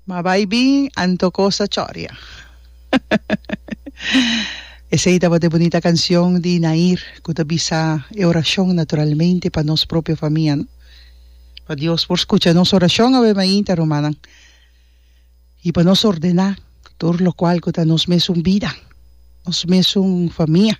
Ma bai bin anto cos a choria. Esey tabata e bunita cancion di Nair cu ta bisa e oracion naturalmente pa nos propio famia no. Pa Dios por scucha nos oracion awe mainta rumannan. Y pa nos ordena tur locual cu ta nos mesun bida, nos mesun famia.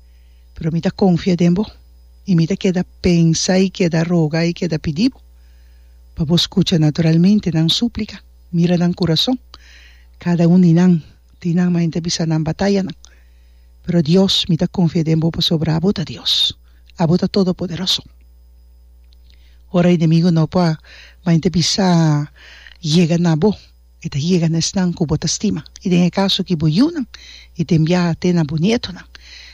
pero mi ta konfia den bo i mi ta keda pensa i keda roga i keda pidi bo pa bo skucha naturalmente nan súplika, mira nan kurason, kada un di nan tin nan mainta bisa nan batayanan, pero Dios mi ta konfia den bo pasobra abo ta Dios, abo ta todopoderoso. Ora enemigo no por mainta bisa yega na bo. I ta yega na esnan ku bo ta stima, i den e kaso ki bo yunan, i ten biaha te na bo nietonan.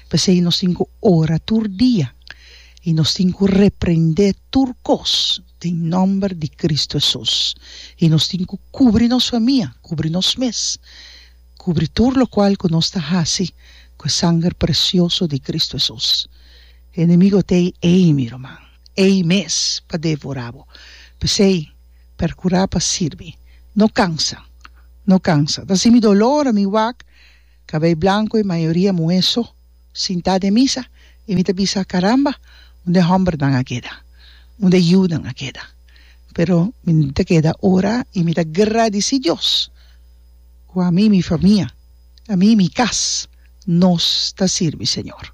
P'esei nos tin ku ora tur dia, i nos tin ku reprendé tur kos den nòmber di Kristu Hesus, i nos tin ku kubri nos famia, kubri nos mes, kubri tur lokual ku nos ta hasi ku e sanger presioso di Kristu Hesus. E enemigo t'ei ei, mi ruman, ei mes pa devorá bo. P'esei. percura pa sirbi. No cansa, no cansa. Ta si mi dolo ora mi wak, cabei blanco y mayoria muhe so, sinta den misa y mi ta bisa, caramba, unda e hombernan a keda? Unda e yiunan a keda? Pero mi no ta keda ora y mi ta gradici Dios cu ami y mi famia, ami y mi cas, nos ta sirbi Señor.